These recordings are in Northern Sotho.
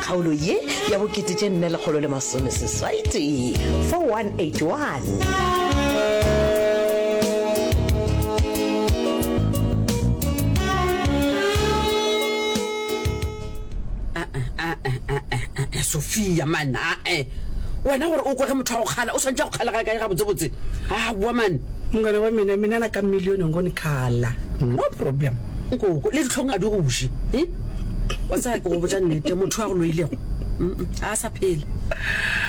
Kgaolo ye ya bokete tše nne lekgolo le masome seswai tee 4181. Sophia man ae wena gore o kwage motho wa go kgala o swantse go kgala ga kae ga botsebotse a boa man mongwana wa mina mina na ka million ngone kgala no problem nkoko le ditlhong a di goše wa tsaya ke go botsa nnete motho a go loilego a sa phele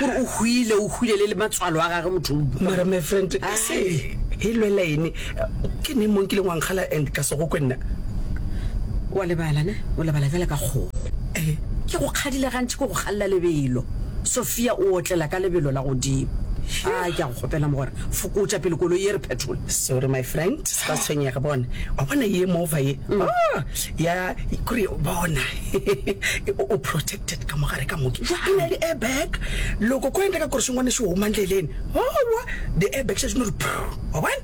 gore o hwile o hwile le le matswalo a gage motho mara my friend ka se e lwela ene ke ne mong kileng wankgala and ka sego kwe nna wa lebala ne o lebala jale ka kgogo eh. ke go kgadile gantši ke go galela lebelo sophia o otlela ka lebelo la godimo a ke a go kgopela mo gore fokotša pele koloi ye re phetola sorry my friend sa tshwenyega bone wa bona ye mova ye mm. ah, ya kore bona o protected ka mogare ka moke e na le airbag loko ko enta ka kore sengwane se oma ndleleng owa the airbag se seno re wa bona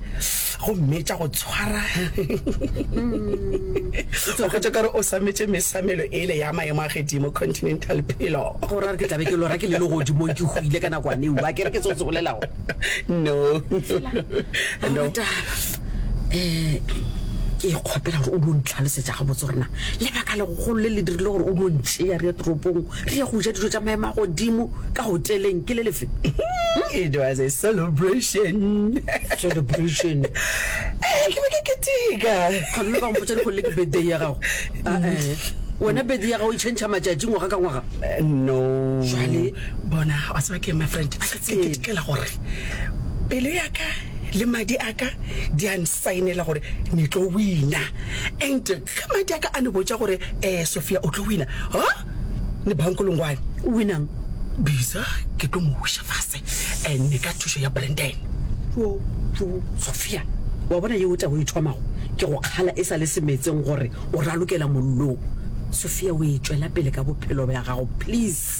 go mmetša go tshwara o kgotsa kare o sametse mesamelo ele ya maemo a gedimo continental pelo go ra re ke tlabe ke lora ke le le godimo ke go ile ka nakwane wa ke re ke tsotse bolelago no no um ke kgopela gore o dio ntlhalosetsa gabotse gore na lebaka legogolo le le dirile gore o dio ntšea re ya toropong re ye go ja dijo tsa maemo a godimo ka hoteleng ke le lefe it was a celebration celebration Eh, ke be ke keteka gomme ba mpotsa dikgole ke birthday ya gago Ah, eh. wena birthday ya gago e change matšatši ngwaga ka ngwaga Eh, no Jwale- bona wa tseba ke eng, my friend ke tsebe. ketekela gore pelo yaka Le madi a ka di a nsaenela gore ni tlo wina. And ge madi a ka a ni botša gore, um Sophia, o tlo wina, ha ni bankolongwane. O winang? Bisa ke tlo mo wiša fase and ka thušo ya Brandon. Tšo, tšo, Sophia, wa bona yeo taba o e thomago ke go kgala e sa le semetseng gore o ralokela mollong. Sophia, o e tšwela pele ka bophelo bja gago, please.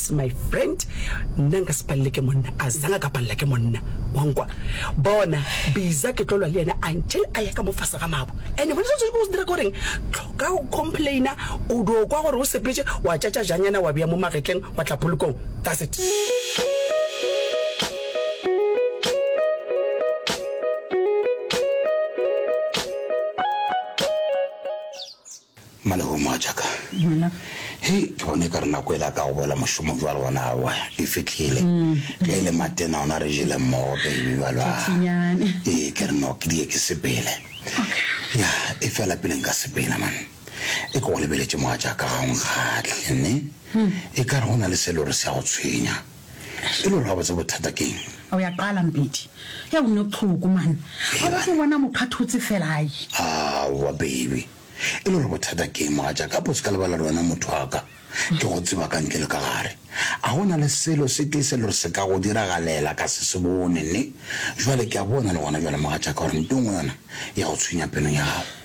That's my friend, nna nka se palele ke monna, a zanga ka palela ke monna, wa nkwa? Bona, Biza ke tlo lwa le yena until a ya ka mo fase ga mabo, and gona se o swanetše go se dira ke goreng, tloka go complaina, o dio kwa gore o sepetše, wa tšatša janyana wa bea mo magetleng, wa tla polokong, that's it. Malehono a tšaka. Hei, ke bona e ka re nako e la ka go boela mošomong jwale gona aowa, e fihlile. Ge e le matena ona re jele mmogo baby jwalo a. Tšhinyane. Ee, ke re no ke die ke sepele. Ya, e fela pele nka sepela man. E ke go lebeletše mogatšaka ga o nkgahle, nne? E ka re go na le se e le gore se a go tshwenya. E le gore gabotse bothata ke eng? O ya qala Mpedi. Hei o nne tlhoko man. Ga o tlo bona mokgathotse fela ai. Aowa baby. E le gore bothata ke eng mogatša ka pose ka lebala le wena motho wa ka. Ke go tseba ka ntle le ka gare. A go na le selo se tee se le gore se ka go diragalela ka se se bone ne? Jwale ke a bona le gona jwale mogatša ka gore nto nngwe yona ya go tshwenya pelong ya gago.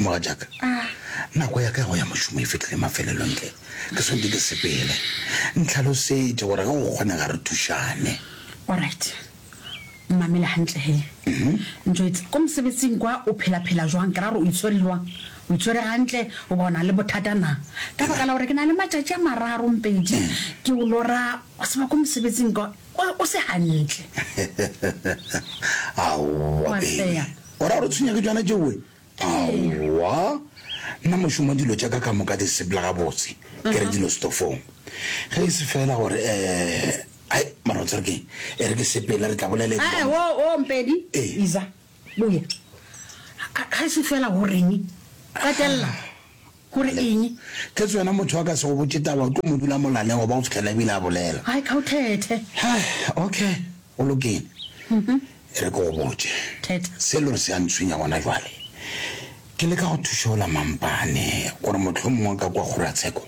Mogatšaka, nako ya ka ya go ya mošomo e fitlhile mafelelong tle ke swantse ke sepele. Ntlhalosetše gore ge go kgonega re thušane. Alright, mmamele gantle he. Ntšoetse, ko mosebetsing kwa o phela-phela jwang? Ke ra gore o itshwere jwang? O itshwere gantle goba o na le bothata na? Ka baka la gore ke na le matšatši a mararo mpedi ke o lora, wa tseba ko mosebetsing kwa o se gantle. Aowa baby, o ra gore o tshwenya ke tšona tšeoe? Aowa, nna mošomo dilo tša ka ka moka di sepela gabotse, ke re dilo setofong. Ge e se feela gore, um, ai, mara o tsere ke eng? E re ke sepele, re tla bolela eng? Ae, wo, wo, Mpedi, Ee. iza, boya. Ga e se feela gore eng? Gatelela. Go re eng? Kgetsi yona motho a ka se go botše taba, o tlo mo dula molaleng goba go fihlela e bile a bolela. Ai, ka o thethe. Hai, okay, go lokile. E re ke go botše. Thetha. Se e le gore se a ntshwenya gona jwale, ke leka go thuša ola Mampane gore mohlomongwe ka kua kgorotsheko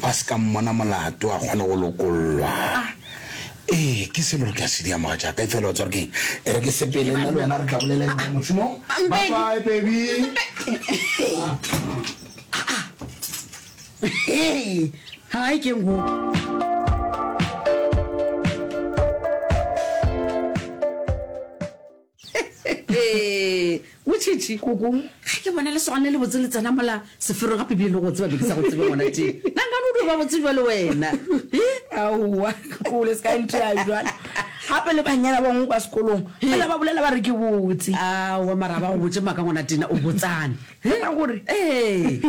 ba se ka mmona molato a kgone go lokollwa. Ah! Ee, ke selo re tla se dia, mogatšaka. Efela wa tswa re keng? E re ke sepele, nna le wena re tla bolela eng ka mošomo? Bye-bye, baby! Aa! Hai, keng go? motšhetši koko ga ke bona lesogane le le botse le tsena mola sefero gape bile le go tseba be ke sa go tsebe ngwana te nankane o dio ba botse jwa le wena aowa kole se ka ntea jalo gape le banyana bangwe kwa sekolong fela ba bolela ba re ke botse aowa mara ba go botse maka ngwana tena o botsane ka gore ee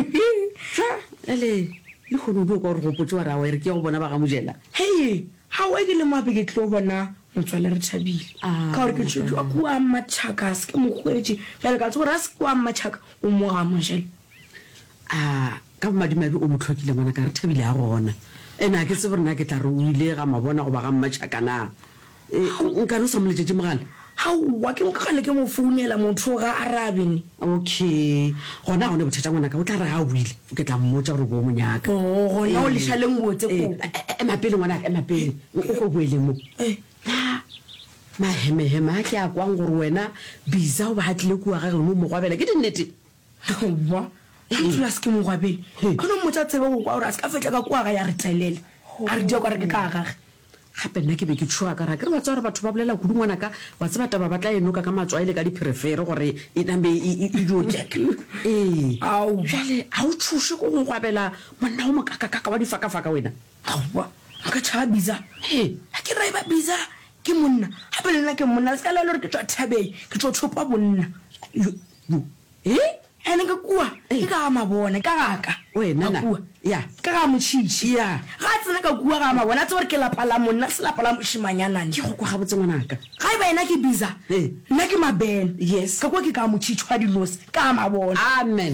ele le kgone o dio kwa gore gopotse wa ra wa e re ke ya go bona ba ga mojela hei ga o e ke le mape ke tlo bona Motswalle Rethabile, ka gore ke tšhwetšwe wa kua Mmatšhaka, a se ke mo hwetše. Bjale ka tseba gore a se kua Mmatšhaka, o mo ga Mojele. A ka bomadimabe o mo tlhokile ngwana ka Rethabile a gona. Ene a ke tsebe gore na ke tla re o ile ga Mabona goba ga Mmatšhaka na. Nka re o sa mo letšetše mogala? Aowa, ke nka kgale ke mo founela motho o ga arabe ne. Okay, gona ga o ne bothata ngwana ka, o tla re ga o boile. Ke tla mmotša gore boo mo nyaka. Oo, gona o lešaleng botse Ee, koo. e- e- ema pele ngwanaka, ema pele. O o ko boeleng mo. Na mahemeheme a ke a kwang gore wena Bisa o ba a tlile kua ga geno mo mogwabela ke dinnete? Aowa, ga ntlo a se ke mogwabele. He. Gona mmotša tsebe go kwa gore a se ka fetla ka kua ga ya re tlelela. A re dia kwa re ke ka gage. Gape nna ke be ke tšhoga ka re a ke re wa tseba gore batho ba bolela kudu ngwanaka, wa tseba taba ba tla e noka ka matswai le ka dipherefere gore e name e, e, e dio kek. Ee. Aowa. Bjale ga o tšhoše go ngwabela monna o mokakakaka wa difakafaka wena? Aowa, nka tšhaba biza. He. A ke re eba biza ke monna, gape le nna ke monna, le se ka laela gore ke tšwa thabeng, ke tšwa thopa bonna. Yo, Bu, He? Ene ka kua, ke ka ga mabone, ka ga ka. Wena na? Kua. Ya. Ka ga motšhitšhi. Ya. Ga a tsena ka kua ga mabone, a tseba gore ke lapa la monna, se lapa la mošimanyanane. Ke go kwa gabotse ngwanaka. Ga e ba yena ke Biza, nna ke Mabene. Yes. Ka kua ke ka ga motšhitšhi wa dinosi, ka ga mabone. Amen.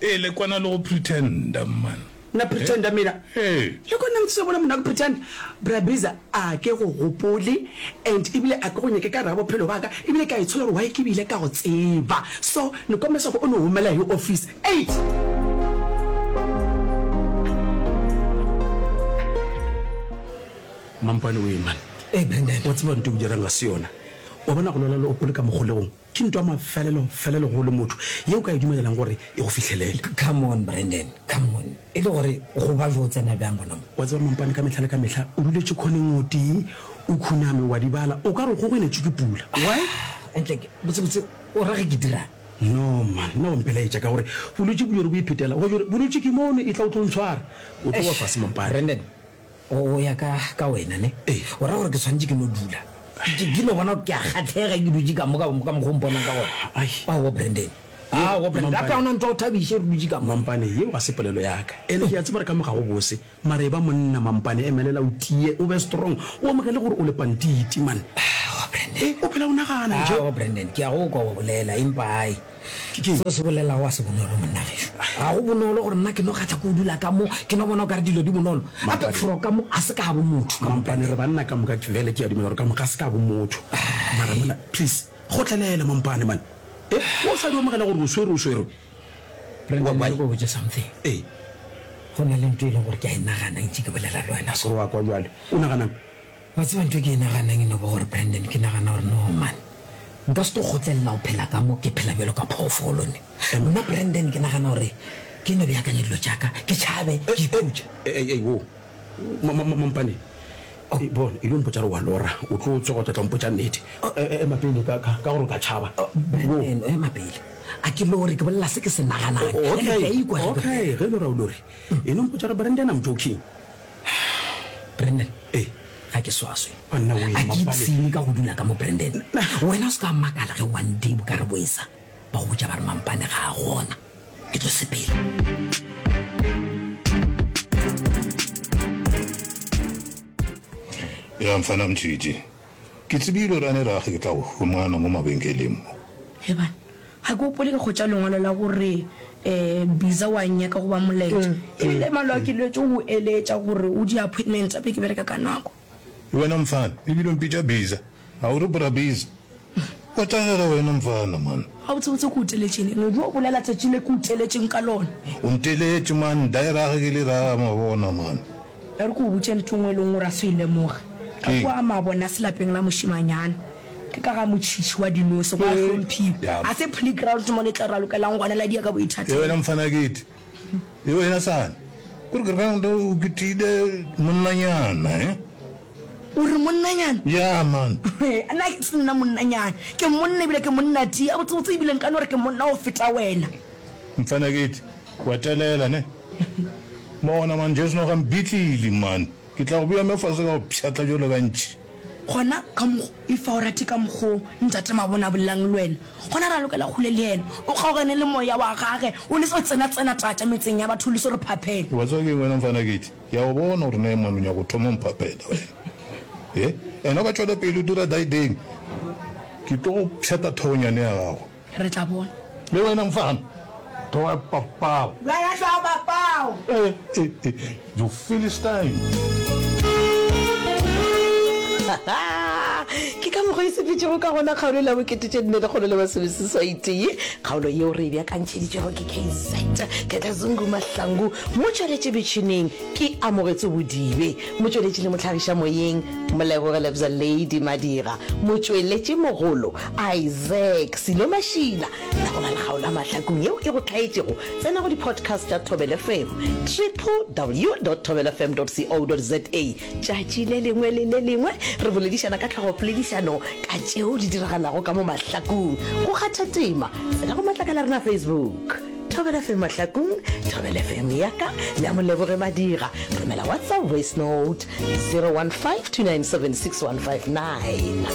Ee le kwana le go pretender mman. Mna pretender mina? Ee. Le kwana le ntshitse bona monna go pretender? Bra Biza a ke go gopole and ebile a ke go nyake ka gare ga bophelo baka ebile ke a itshola gore why ke bile ka go tseba so ne kwa mesa go o no homela yo office eight. Mampane o ye man. Ee Brandon. Wa tseba ntho e o dirang ga se yona. Wa bona go lwela le opole ka mogolegong. Ke ntwa mafelelo felelo go le motho ye o ka e dumelelang gore e go fihlelele. Come on Brandon, come on. E le gore go ba bjo o tsena bjang gona mo? Wa tseba mampane ka mehla le ka mehla o duletše khoneng o tee o khuname wa di bala o ka re o kgogweletšwe ke pula. Why? Ah, Ntleke, botse botse o ra ge ke dirang? No man, nna wa mpelaetša ka gore bolwetši bo jore bo iphetela go jore bolwetši ke mono e tla o tlo ntshwara o tlo wa fase mampane. Brandon, O ya ka, ka wena, ne? O ra gore ke swanetše ke no dula. Ke, ke no bona gore ke a kgathlega ke dutše ka mo, ka, ka mokgwa o mponang ka gona. Ai. Aowa, Brandon. Aowa, Brandon. Mampane. Gape ga o na ntwa o thabiše re dutše ka mo. Mampane, yeo ga se polelo ya ka. Ene ke a tseba re ka mo ga go bose. Mara eba monna, Mampane. Emelela o tie, o be strong. O amoge le gore o lepantiti, man. Aowa, Brandon. E, o phela o nagana, nje. Aowa, Brandon. Ke a go kwa o bolela, empa ai. Ke ke'ng seo se bolelago a se bonolo, monna gešo? Ga go bonolo gore nna ke no kgatha ko dula ka mo, ke no bona o ka re dilo di bonolo. Gape fro ka mo a se ka bo motho. Mampane, re banna ka moka bjale ke a dumela gore ka moka a se ka bo motho. Mara monna, please, kgotlelele Mampane man. E, o sa di omogela gore o swerwe, o swerwe. Brendon, ke go botše something. Ee. Go na le nto e leng gore ke a e nagana ntše ke bolela le wena so. Wa kwa bjale. O nagana'ng? Wa tseba ntho e ke e naganang e no ba gore, Brandon, ke nagana gore no man, nka se tlo kgotlelela go phela ka mo ke phela bjalo ka phoofolo ne. Nna Brandon ke nagana gore ke no beakanye dilo tša ka, ke tšhabe, ke ikhutše. Ei, ei, wo, ma, ma, ma, mampane, e, bona, e lo mpotša re wa lora, o tlo tsoga o tla tla mpotša nnete. E, e, ema pele ka, ka, ka gore o ka tšhaba. Brandon, ema pele. A ke lore, ke bolela se ke se naganang. Okay, okay, ge e lora o lore. E no mpotša re Brandon, I'm joking. Brandon. Ee. Ga ke swaswe. Banna o ema pale. Ga ke ipsene ka go dula ka mo Brandon. Wena o se ka makala ge one day bo ka re boesa ba go botša ba re mampane ga a gona. Ke tlo sepela. Bjang mfana Mtšhitšhi? Ke tsebile gore a ne rage ke tla go humana mo mabenkeleng mo. Heban, ga ke gopole ke kgwetša lengwalo la go re Biza wa nnyaka goba Molaetša. E bile malo a ke lwetše go go eletša gore o di appointment tša pele ke bereka ka nako. Le wena mfana, e bile o mpitša Biza. A o re Bra Biza? Wa tagega wena mfana man. Gabotsebotse ke go teletšeng ene o dio bolela tšatši le ke go teletšeng ka lona. O nteletše man, da e rage ke le raya mabona man. E re ke go botše ntho e nngwe e leng gore a se o e lemoge. Ka kua Mabonase lapeng la mošemanyana ke ka ga motšhitšhi wa dinose, go a hlomphiwa. Ga se playground mo le tla ralokelang gona la diya ka boithatelo. Yewena mfana ke ete yewena sane ko re ground o kitile monnanyana he. O re monnanyana? Ya man. Nna ke se nna monnanyana. Ke monna ebile ke monna ti. Gabotsebotse ebile nka no re ke monna go feta wena. Mfana ke ete. Go etelela, ne? Bona, man, Jesu no ga mbitlili, man. Ke tla go bea me fase ka go pshatla bjalo ka ntši. Gona, ka mokgo, e fa o rate ka mokgo Ntate Mabona a bolelang le wena, gona ra lokela kgole le Yena. O kgaogane le Moya wa Gage, o le so tsena, tsena tata metseng ya batho, o le so re phaphele. Wa tseba ke eng wena, mfana Keith? Ke a go bona gore na e mong o nyaka go thoma go mphaphela, wena. He? And-e o ka tšwela pele o dira daideng, ke tlo go pshata thogonyane ya gago. Re tla bona. Le wena mfana, tloga papao. Wena tloga papao. Eh, eh, eh, you Philistine. Ke ka mokgwa e sepetšego ka gona kgaolo e la bokete tše nne lekgolo le masomeseswaitee. Kgaolo yeo re e bjakantšheditšwego ke KZ Ketlazungu Mahlangu, mo tšweletše metšhineng ke Amogetso Bodibe, mo tšweletši le mohlagiša moyeng Molebogelebza Lady Madira, mo tšweletši mogolo Isaac Silo Mashila, tla go bala kgaolo ya Mahlakong yeo e go hlaetšego. Tsena go di-podcast tša Thobel FM, www.thobelfm.co.za. Tšatši le lengwe le le lengwe re boledišana ka tlhogopoledišano ka tšeo di diragalago ka mo Mahlakong. Go kgatha tema, tsena go matlakala a rena a Facebook, Thobel FM Mahlakong, Thobel FM ya ka le ya Moleboge Madira. Romela WhatsApp voice note 015 297 6159.